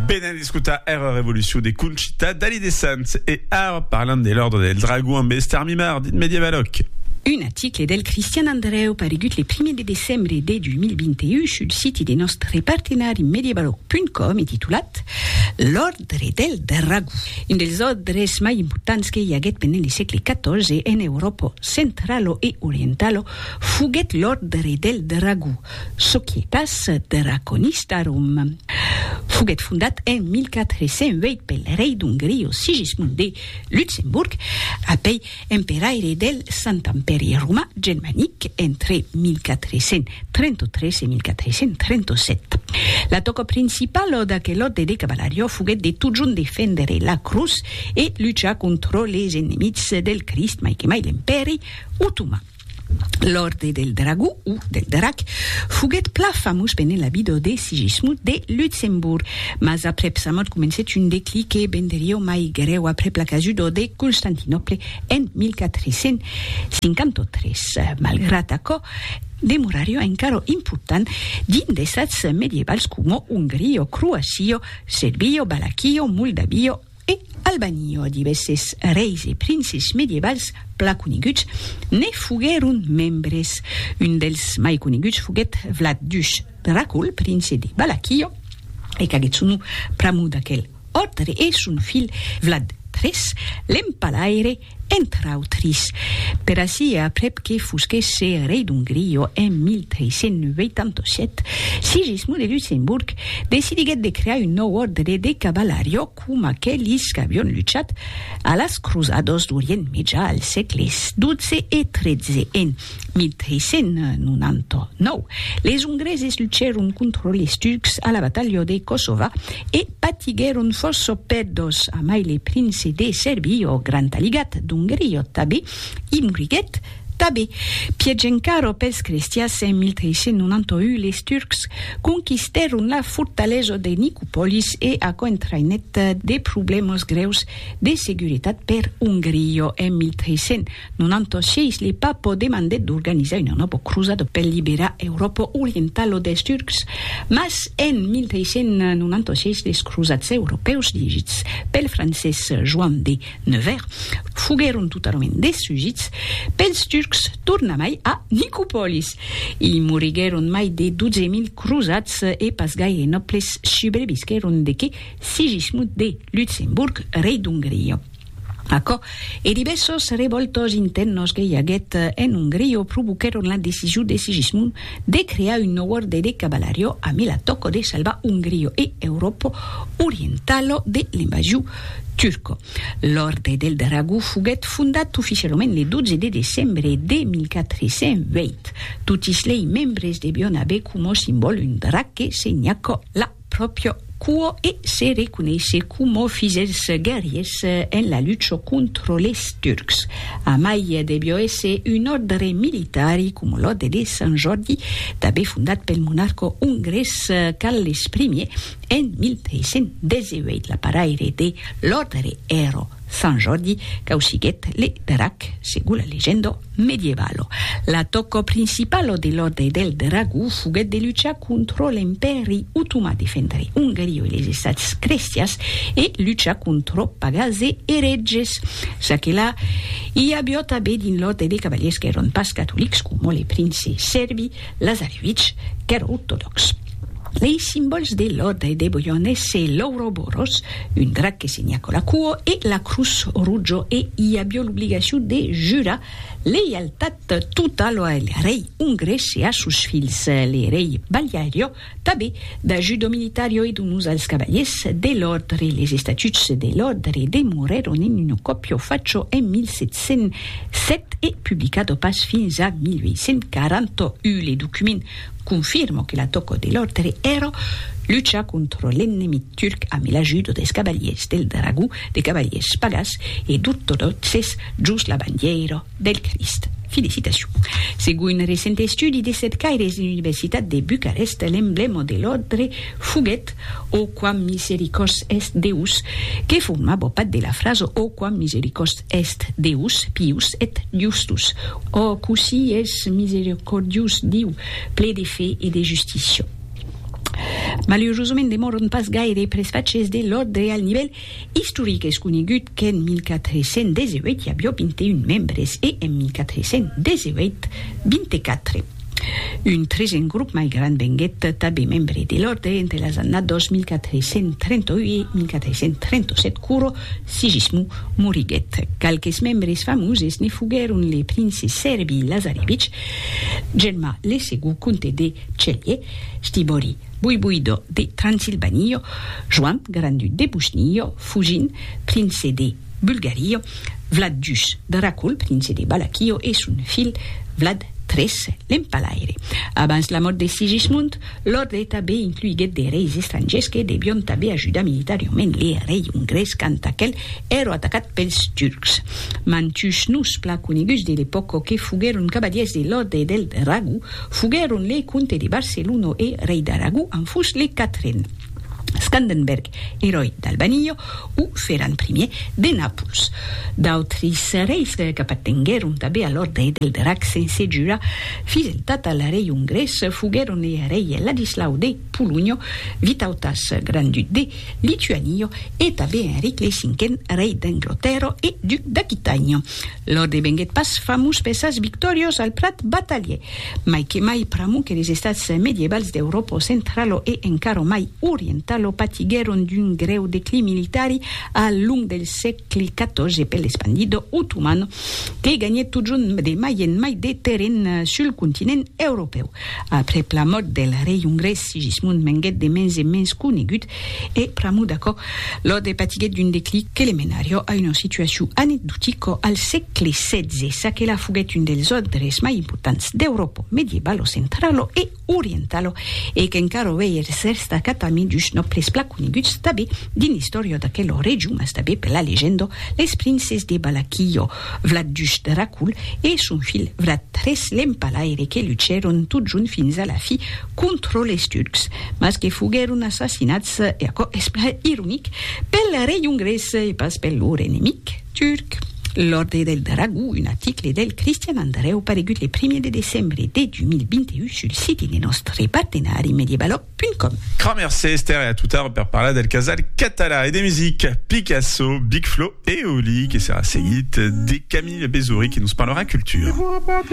Ben an escutar era revolucion de Conchita Dalí de Sants e ara parlam de l'Òrdre del Dragon amb Esther Mimard, dit Medievaloc. Un article del Cristian Andrèu paregut le primièr de decembre de 2021 sul siti de nòstre partenari medievaloc.com e titulat L'Òrdre del Dragon, un dels òrdres mai importants que i aguèt pendent le sègle xiv en Euròpa centralo e orientalo foguèt l'Òrdre del Dragon, Societas dera conista Rom. Foguèt fondat en 1408 pel rei d'Ongrio Sigismund de Luxemburg, apèi emperaire del Sant Empèri Romà Germanic entre 1433 e 1437. La tòca principala d'aquel òrde de cavalariá foguèt de totjorn defendre la crotz e luchar contra les enemics del Crist, mai que mai l'Empèri Otoman. L'Òrde del Dragó, o del Drac, foguèt plan famós pendent la vida de Sigismund de Luxemborg, mas aprèp sa mòrt comencèt un declic que venderió mai grèu aprèp la casuda de Constantinòple en 1453. Malgrat aquò, demorarió encara important dins d'estats medievals coma Ongria, Croacia, Serbia, Valaquia, Moldavia, E al banio divèsses reis e princes medievals pla coneguts ne foguèron membres. Un dels mai coneguts foguèt Vlad Dush Dracul, prince de Balaquio, e qu'aguèt son nom pr'amor d'aquel òrdre e son filh Vlad iii, l'empalaire, entre autris, per ací e aprèp que fosquèsse rei d'Ongria en 1387, Sigismond de Luxemborg decidiguèt de crear un nòu òrdre de cavalariá com aquelis qu'avián luchat a las crosadas d'Orient Mejà al sègle xii e xiii en 1399, les Ongreses luchèron contra les Turcs a la batalha de Kosova e patiguèron fòrça pèrdas, amai le prince de Serbia, ò Grand Aligat d'Ongria tabé, i moriguèt tabé. Pièch encara pels crestians, en 1391 les Turcs conquistèron la fortalesa de Nicopolis e aquò entraïnèt de problèmas grèus de seguretat per Ongria. En 1300. Non antoshièis li pas po demandèt d'organizar una nòbo crosada per liberar Euròpa orientala des Turcs, mas en 1396 les crosats europèus dirigits pel francés Joan de Nevers foguèron totalament destrugits pels Turcs tornamai a Nicopòlis. I moriguèron mai de 12.000 crosats e pas gaire nòbles subrevisquèron de que Sigismund de Lutzemburg, rei d'Ongria. Aquò e divèssos revòltos intèrnos que i aguèt en Ongria provoquèron la decision de Sigismund de crear un nòu òrde de cavalario amb l'atòco de salvar Ongria e Euròpa orientala de l'invasion turca. L'Òrde del Dragó foguèt fondat oficialament le 12 de decembre de 1408. Totis lei membres devián aver coma simbòl un drac que senhaca la pròpria cua e se reconeisser coma fidèls guerriers en la lucha contra les Turcs. A mai, deviá èsser un òrdre militari, coma l'òrdre de Sant Jòrdi, tanben fondat pel monarca ongrés Carles I en 1318. L'aparaire de l'òrdre èra. Sant Jordi causiguèt le drac, segon la legenda medievalo. L'atòca principalo de l'Òrdre del Dragó foguèt de luchar contra l'Empèri Otomà, defendre Ongaria e les Estats crestians e luchar contra pagans e eretges. Ça que la, i aviá tanben dins l'Òrdre de cavaliers qu'èran pas catolics, coma le prince sèrbi Lazarevich, qu'èra ortodòx. Lei simbòls de Lòda e de Boione se l'Ouroboros, un drac que se nhaco la cuo, e la Crus Rujo e i avió l'obligacion de jurar leialtat totalo a el rei ongrés e a sos filhs, le rei Baliario, tabé da Judo Militario e donós als cavaliers de l'òrdre. Les estatuts de l'òrdre demorèron en un còpio facho en 1707 e publicado pas fins a 1841. Le document Confirmo que la tòco de l'òrdre èra luchar contra l'ennemic turc amb l'ajuda des cavaliers del dragó, de cavaliers pagans e d'ortodòxes jos la bandièira del Crist. Felicitacion. Segon un recent estudi de cercaires de l'Universitat de Bucarest, l'emblèma de l'òrdre foguèt. O quam misericors est Deus, que forma bopat de la frasa O quam misericors est Deus, pius et justus. O cossí es misericordius Diu, ple de fe e de justícia. Malurosament demòron pas gaire presfachés de l'òrdre al nivèl Istoric, es conegut qu'en 1418 i avió 21 membres e en 1418, 24. Un tresen grop mai grand venguèt tabé membre de l'òrdre entre las annados 1438 e 1437 quoro Sigismund moriguèt. Qualques membres famoses ne foguèron le prince Serbi Lazarevich, Germà le Segon comte de Celje, Stibori, Boiboido de Transilvanio, Joan Grandu de Bushnio, Fujin, prince de Bulgario, Vlad Jus de Racul, prince de Balakio, e son filh Vlad tres, l'empalaire. Abans la mòrt de Sigismund, l'òrdre tanben incluiguèt de reis estrangiers que devion tanben ajudar militarioment le rei ongrés quand aquel èro atacat pels turcs. Mantuns noms plan coneguts de l'epòca que foguèron cavalièrs de l'òrdre del Dragó, Foguèron le comte de Barcelona e rei d'Aragó en fus le quatren, Scandenberg, eròi d'Albanio, o Ferran Primièr de Nàpols. D'autris reis qu'apatenguèron tanben a l'òrdre del Drac sense jurar fideltat al rei ongrés foguèron le rei Ladislau de Polonha, Vitautas, grand-duc de. Lituanio e tanben Enric lei cinquen, rei d'Anglotèrra e duc d'Aquitània. Lord e venguèt pas famós per sas victòrias al prat batalhièr, mai que mai pr'amor que les estats medievals d'Euròpa centrala e encara mai orientala patiguèron d'un grèu declin militari al long del sègle xiv per l'espandida otomana que ganhèt totjorn de mai en mai de terren sul continent europèu. Aprèp la mòrt del rei ongrés Sigismund venguèt de mens en mens conegut e pr'amor d'aquò, Lode patiguèt d'un declic que le menarió a una situacion anecdotica al sègle xvi, ça que la foguèt un dels ordres mai importants d'Euròpa medievalo centralo e orientalo e qu'encara avei eth rèst acatament d'uns nòbles plan coneguts tanben dins l'istòria d'aquela region mas tanben per la legenda les princes de Balaquillo, Vlat dus Dracul e son filh Vlat tres l'Empalaire que luchèron totjont fins a la fi contra les Turcs, mas que foguèron assassinats, e aquò es plan ironic, pel rei ongrés e pas pel lor enemic turc. L'Òrdre del Dragó, un article del Cristian Andrèu paregut le primièr de decembre de 2021 sul siti de nòstre partenari Mediebaloc. Www.radiocausas.com. Cra mercé Esther e a totar per parlar del casal català e de musica Picasso, Big Flo e Oli que serà seguit de Camille Bezouri que nos parlarà cultura.